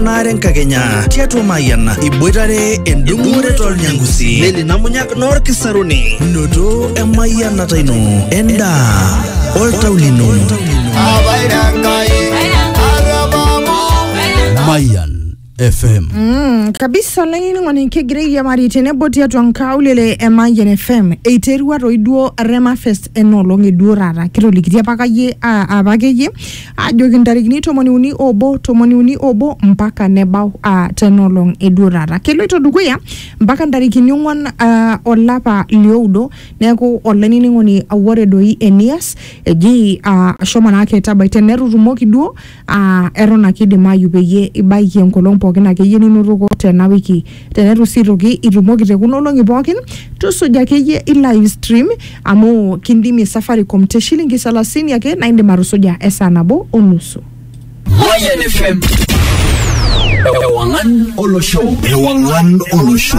naare nkakenya tiatua mayian iboitare endung'ore tolnyangusi neli namunyak noorkisaruni noto emayianata ino endaa oltau lino Mayan FM. Mm, kabisa olainining'oni kigira airiamari tenebo tiatua nkaulele e Mayian FM eiterua toi duo Rema Fest ena olong e duo taata kitolikitia apakayie a- apakeyie ajoki ntarikini tomoni uni obo tomoni uni obo mpaka nebau uh, tenolong eduo taata keloito dukuya mpaka ntarikini ong'uan uh, olapa lioudo neeku olainining'oni ore doi enias eji uh, ashomo naake tabai tenetutumoki duo uh, eton ake idimayu peyie ibaiki enkolong pookin akeyie ninotoko tena wiki tenetu sii aitoki itumoki te kuna olong'i pookin tusuja akeyie i live stream amu kindimie safaricom te shilingi salasini ake naa indim atusuja esaa nabo o nusu Mayan FM. Ewangan Olosho. Ewangan Olosho.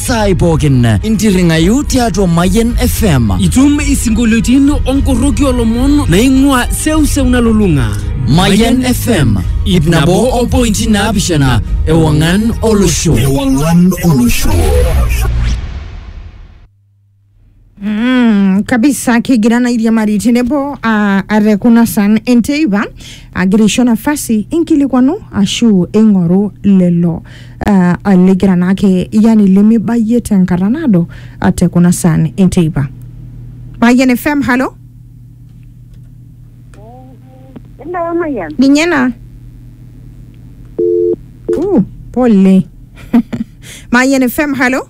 saai pookin intirring'ayu tiatua Mayian FM. Itum isinkolioitin onkorroki olomon naing'ua seuseu nalulung'a. Mayian FM ip nabo o pointi naapishana ewang'an olosho. Ewang'an olosho. Mm, kabisa kigira na iriamari tenebo uh, are kuna san enteipa agira aisho nafasi inkilikwanu ashu ing'oru lelo uh, ligira naake yani limibayie tenkata naado uh, te kuna san enteipa Mayian FM halo Hello, Mayan. ninye na uh, pole Mayian FM halo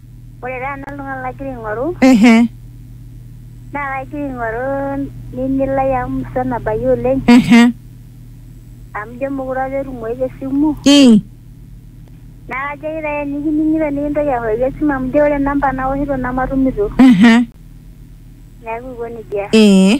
Ore taa nanu oltung'ani lagira aing'oru ehe naa kagira aing'oru nini lai amu musan nabayie oleng ehe amu ijo mekure apa etumoyu te simu ii naa kajoki taa enikining'ito nikintoki aoshioki esimu amu ijo ore namba naoshito nematumito ehe neeku aiko nejia. ee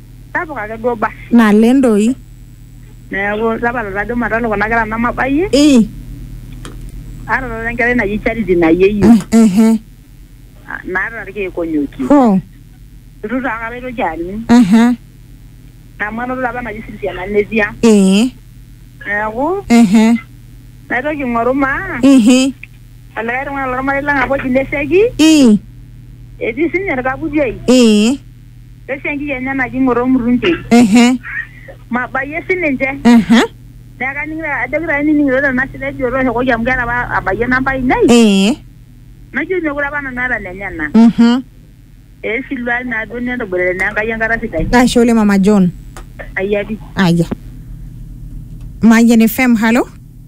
Sapuk ake duo basi. Naleng doi. Neeku tapala tajo matalo kuna kera namabayie. Ii. Aata taata enkerai naji Charity nayieyu. Ehe. Naata irkeek onyokie. Hoo. Itu taa akata aitoki aning. Ehe. Amu anoto apa naji Cynthia Nanetia. Ee. Neeku. Ehe. Naitoki aing'oru maa. Ihi. Olikae tung'ani lormarei lang apa oji Leseki. Ii. Etii sinye orkaputi ai. Ee. Pesho enkiki enye naji ng'oto omurunke. ehe Mabayie sininche. aha Neeku kaning'ito ajoki taa nining'ito tena sita eji otooshokoki amu keeta apa abayie namba ainei. ee Najoki meekure apa nanu aata nenyena. mhm Ee siluai naa duo netoboitare naa Enkai enkata sidai. ashe oleng mama John Ayia pii. aya Mayian FM halo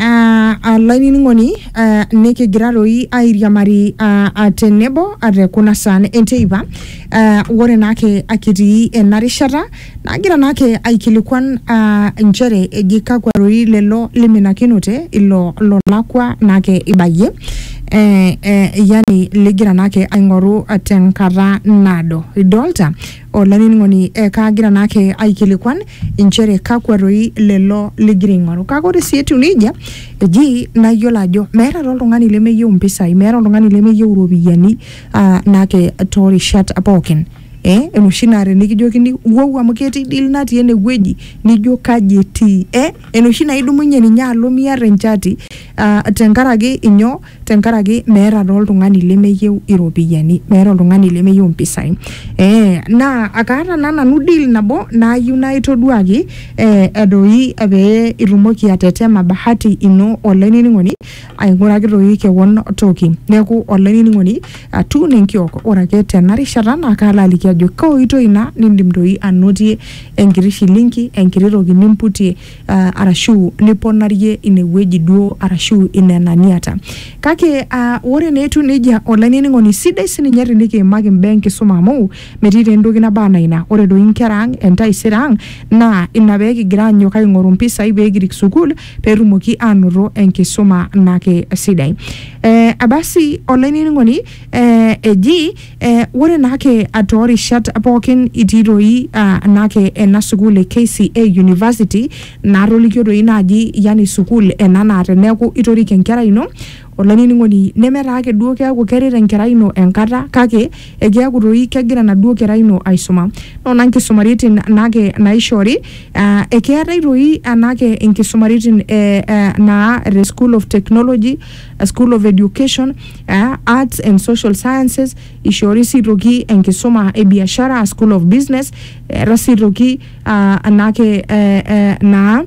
Ah, ah, lainining'oni ah, nikigira doi airiamari ah, ah, tenebo ah, te kuna saan enteipa ah, ore naake akitii ena rishata nagira naake aikilikuan ah, nchere eji kakwa doi lelo liminakinote ilo lolakwa naake ibayie eh, eh, yani ligira naake aing'oru ah, tenkata naado idolta Olainining'oni, ekaagira naake aikilikuan inchere kakwa doi lelo ligira aing'oru. Kake ore sii etiu neijia, eji naa iyiolo ajo meeta taa oltung'ani lemeyieu impisai, meeta oltung'ani lemeyieu iropiyiani aa naake toorishat pookin. Eh enoshi naa tenikijokini wou amu ketii deal natii enewueji nijo kaji etii. Eh enoshi naa idumunye ninye alo miata enchati aa tenkaraki inyoo tenkaraki meeta taa oltung'ani lemeyieu iropiyiani meeta oltung'ani lemeyieu impisai eh, naa akaata naa nanu deal nabo nayieu naa itoduaki eh, edoi pee itumoki atetema bahati ino olainining'oni aing'uraki toi kewon toki neeku olainining'oni atuu nenkiok ore ake tena rishata naa kaalo aliki ajo kaoitoi ina nindim toi anotie enkiti shilingi enkiti toki nimputie uh, arashu liponarie inewueji duo arashu inena niata kake uh, ore neetu nejia olainining'oni sidai sininye tinikiimaki imbaa enkisuma amu metii taa entoki naba anaa ina ore doi inkera ang entaisere ang naa ina pee kigira anyok aing'oru mpisai pee kirik sukuul peetumoki aanoto enkisuma nake sidai eh, abasi olainining'oni eh, eji Eh, ore naake ah, toorishat pookin itii doi ah, naake ena sukuul e KCA University naatolikio doi naaji yani sukuul ena naa teneeku itorik enkerai ino olainining'oni neme taa ake duo keeku keret enkerai ino enkata kake ekeeku doi kegira enaduo kerai ino aisuma noona nkisumaritin naake naishori ah, ekeetae doi anaake inkisumaritin eh, eh, naa te school of technology, school of education eh, Arts and Social Sciences ishori sirroki enkisuma e biashara School of Business eeta sirroki ah, anake eh, eh, naa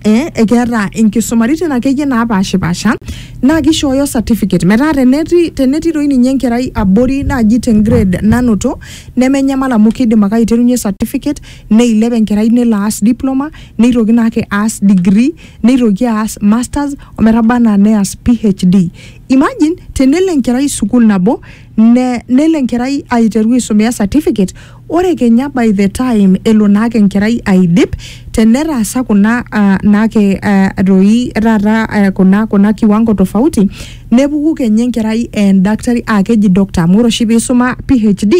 eh, ekeeta inkisumaritin akeyie naapashipasha naa kishooyo certificate metaa teneti tenetii doi ninye enkerai abori naaji te grade nanoto nemenyamal amu kidim ake aiterunye certificate neilep enkerai nelo aas diploma neitoki naake aas degree neitoki aas masters ometaba anaa neas PhD. Imagine tenelo enkerai sukuul nabo ne, nelo enkerai aiteru aisomea certificate ore kenya by the time elo naake enkerai aidip tenetaasa kuna uh, naake uh, doi taata uh, kuna, kuna kiwango tofauti nepuku kenya enkerai endakitari aa keji doctor amu ore oshi piisuma PhD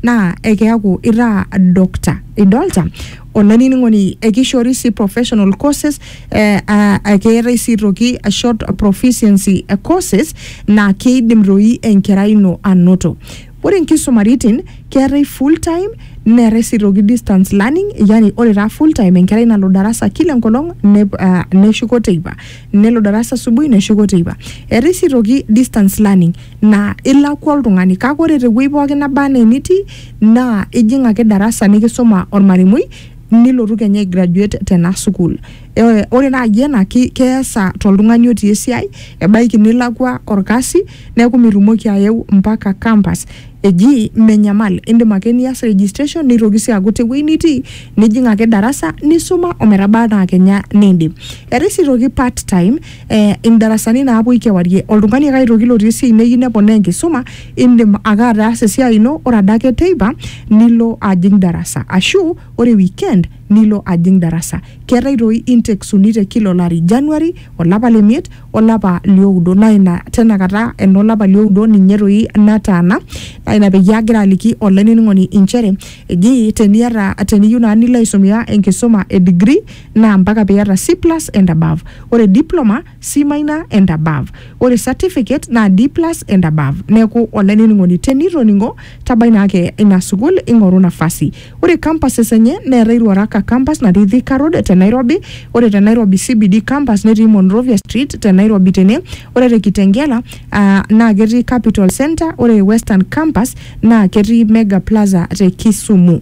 naa ekeaku itaa doctor idolta olainining'oni ekishoori sii professional courses eh, uh, keetae sii toki a short proficiency courses naa keidim toi enkerai ino anoto ore nkisumaritin keetae full time neetae sii toki distance learning yani ore taa full time enkerai nalo darasa kila enkolong nep- ah, neshuko teipa nelo darasa asubuhi neshuko teipa eetae sii aitoki distance learning naa ilakua oltung'ani kake ore tewueji pookin naba anaa enitii naa ijing ake darasa nikisuma ormalimui nilotu kenya ai graduate tena sukuul Eh, ore naaji ena ki- keesa toltung'ani otii esiai ebaiki nilakua orkasi neeku mitumoki ayeu mpaka campus eji menyamal indim ake nias registration nitoki sii aaku tewueji nitii nijing ake darasa nisuma ometaba anaa kenya niindip Etii sii toki part time eh, indarasani naapuoi kewarie oltung'ani ake aitoki lotii esiai neyieu neponaa enkisuma indim ake ataasa esiai ino ore adake teipa nilo ajing darasa ashu ore weekend nilo ajing darasa keetae toi intakes uni te kila olari January olapa le miet olapa lioudo naa ina tenakata enolapa lioudo ninye toi nataana naa ina peyie agira aliki olainining'oni inchere eji teniata teniyieu naa nilo aisomea enkisuma e degree naa mpaka piata C+ and above. Ore diploma, C minor and above. Ore certificate naa D+ and above. Neeku olainining'oni tenitoning'o tabai naa ake ina sukuul ing'oru nafasi. Ore campuses enye neetae Ruaraka campus natii Thika road te Nairobi, ore te Nairobi CBD campus netii Monrovia street te Nairobi tene, ore te Kitengela aa naa ketii Capital Centre, ore Western campus naa ketii Mega Plaza te Kisumu.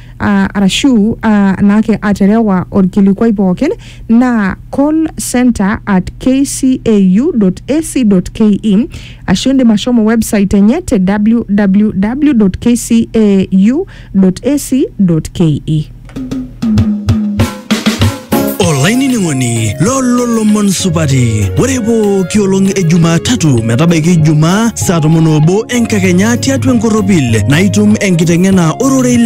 uh, arashu uh, naake aterewa orkilikuai pookin naa call center at kcau.ac.ke ashu indim ashomo website enye te www.kcau.ac.ke olainining'oni lololomon supati ore pooki olong e jumatatu metabaiki ijumaa saa tomon obo enkakenya tiatua enkorropil naitum enkiteng'ena ororei le